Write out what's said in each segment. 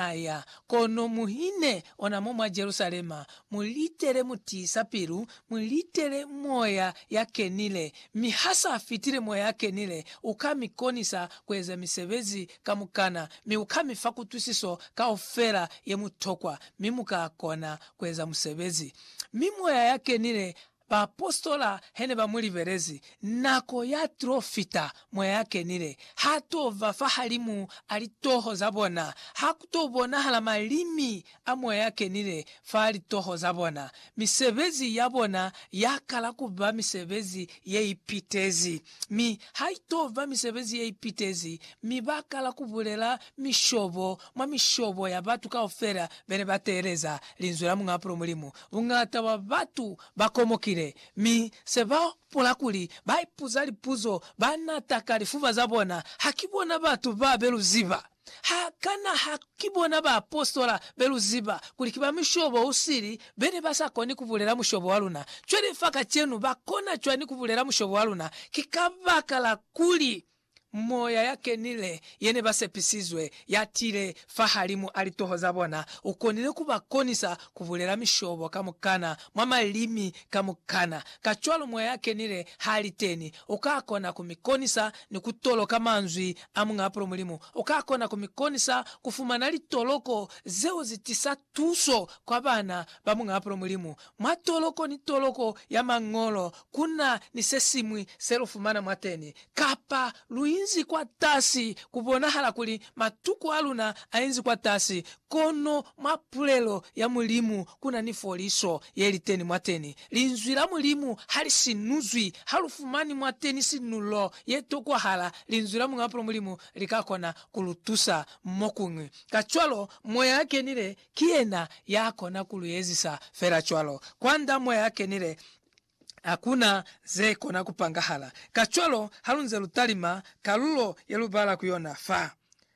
Aya, kono mu ine ona mo mwa Jerusalema, mu litele mu tiisa pilu, mu litele Moya ya Kenile, mi ha sa fitile Moya ya Kenile, u ka mi konisa ku eza misebezi kamukana, mi u ka mi fa kutwisiso kaufela ye mu tokwa, mi mu ka kona ku eza musebezi. Mi Moya ya Kenile Baapositola he ne ba mu libelezi, nako ya t'o fita mwa ya kenile. Ha t'o ba fahalimu a litoho za bona. Ha ku t'o bonahala malimi a mwa ya kenile fa litoho za bona. Misebezi ya bona ya kala ku ba misebezi ye ipitezi, mi ha i t'o ba misebezi ye ipitezi, mi ba kala ku bulela mishobo mwa mishobo ya batu kaufela be ne ba teeleza linzwi la Muñ'a Pulo Mulimu. Buñata bwa batu ba komokile, mi se ba hopola kuli ba ipuza lipuzo ba nata ka lifuba za bona, Ha ki bona batu ba be lu ziba? Ha kana ha ki bona baapositola be lu ziba kuli ki ba mushobo u sili be ne ba sa koni ku bulela mushobo wa luna? Cwale fa kacenu ba kona cwani ku bulela mushobo wa luna? Ki kabakala kuli Moya ya Kenile ye ne ba sepisizwe ya tile fahalimu a litoho za bona, u konile ku ba konisa ku bulela mishobo kamukana mwa malimi kamukana. Kacwalo moya ya Kenile ha li teni, u ka kona ku mi konisa ni ku toloka manzwi a Muñ'a Pulo Mulimu. U ka kona ku mi konisa ku fumana litoloko zeo zi tisa Tuso kwa bana ba Muñaapulo Mulimu, Mwa toloko ni toloko ya Mañolo ku na ni se siñwi se lu fumana mwateni, kapa lu inzi kwatasi. Ku bonahala kuli matuku a luna a inzi kwatasi, kono mwa pulelo ya Mulimu ku na ni foliso ye li teni mwateni. Linzwi la Mulimu ha li sinuzwi. Ha lu fumani mwateni sinulo ye tokwahala, Linzwi la Muñaapulo Mulimu li ka kona ku lu tusa mo kuñwi. Kacwalo, Moya a Kenile ki yena ya kona ku lu ezisa fela cwalo. Kwand'a Moya a Kenile, hakuna ze kona ku pangahala. Kacwalo, halunze lu talima kalulo ye lu bala ku yona fa,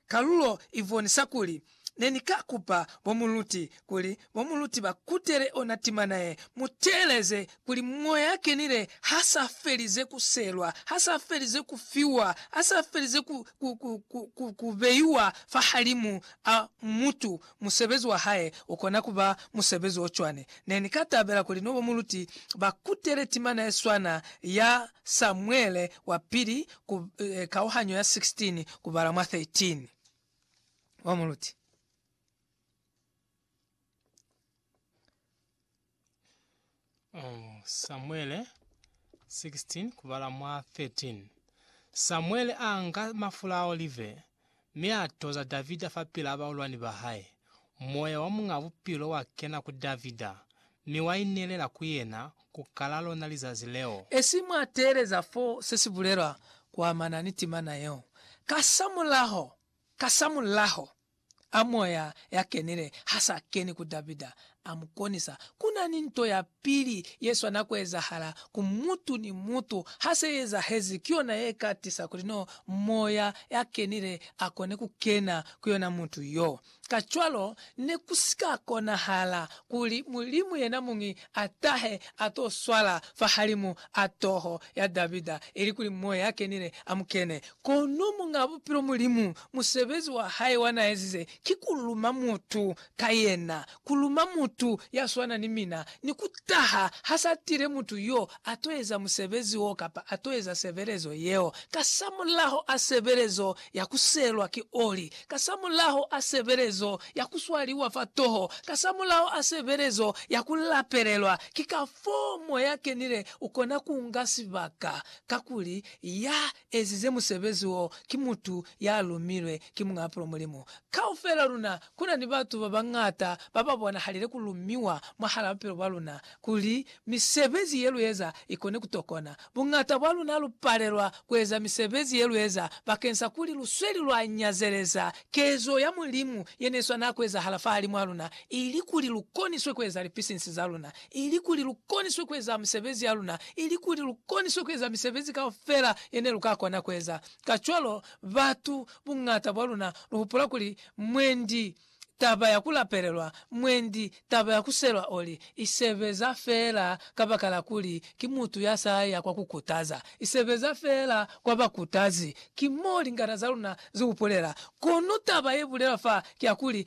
kalulo i bonisa kuli, Ne ni ka kupa bo muluti kuli mo muluti ba kutele ona timana ye, mu teeleze kuli Moya ya Kenile ha sa felize ku selwa, ha sa felize ku fiwa, ha sa felize ku, ku, ku, ku, ku, ku beiwa fahalimu a mutu. Musebezi wa Hae u kona ku ba musebezi o cwani. Ne ni ka tabela kuli no ba muluti ba kutele timana ye swana ya Samuele wa Pili ku, eh, kauhanyo ya 16 kubala mwa 13. Ba muluti. Oh, Samuele 16 kubala mwa 13 Samuele a nga mafula a olive mi a toza Davida fa pila baulwani ba hae. Moya wa Muñ'a Bupilo wa kena ku Davida, mi wa inelela ku yena ku kala lona lizazi leo. Esi mwa teeleza fo se si bulelwa ku amana ni timana yeo, kasamulaho, kasamulaho a Moya ya Kenile ha sa keni ku Davida, a mu konisa. Ku na ni nto ya pili ye swana ku ezahala ku mutu ni mutu. Ha se i ezahezi, ki yona ye ka tisa kuli no Moya ya Kenile a kone ku kena ku yona mutu yo. Kacwalo, ne ku si ka konahala kuli Mulimu yena muñi a tahe a to swala fahalimu a toho ya Davida, ilikuli Moya ya Kenile a mu kene. Kono Muñ'a Bupilo Mulimu Musebezi wa hae wa n'a ezize ki ku luma mutu ka yena, ku luma mutu ya swana ni mina, ni ku taha ha s'a tile mutu y'o a t'o eza musebezi w'o kapa a t'o eza sebelezo yeo, kasamulaho a sebelezo ya ku selwa ki oli, kasamulaho a sebelezo ya ku swaliwa fa toho, kasamulaho a sebelezo ya ku lapelelwa. Ki kafoo Moya Kenile u kona ku nga sibaka, kakuli ya ezize musebezi wo ki mutu ya lumilwe ki Muñ'a Pulo Mulimu. Kaufel'a luna ku na ni batu ba bañata ba ba bonahalile ku lumiwa mwahal'a bupilo bwa luna kuli misebezi ye lu eza i kone ku tokona. Buñata bwa luna lu palelwa ku eza misebezi ye lu eza bakeng sa kuli lu sweli lwa nyazeleza kezo ya Mulimu ye ne swanela ku ezahala fahalimw'a luna, ilikuli lu koniswe ku eza lipisinsi za luna. ilikuli lukoniswe kueza misebezi yaluna, ilikuli lukoniswe kueza misebezi kaufela yene luka kona kueza. Kacwalo, batu buñata bwaluna luhupula kuli mwendi taba ya kulapelelwa, mwendi taba ya kuselwa oli, isebeza feela kabakala kuli ki mutu yasaya kwa kukutaza, isebeza feela kwa bakutazi. Ki moo lingata zaluna zihupulela. Kono taba yebulelwa fa kiyakuli,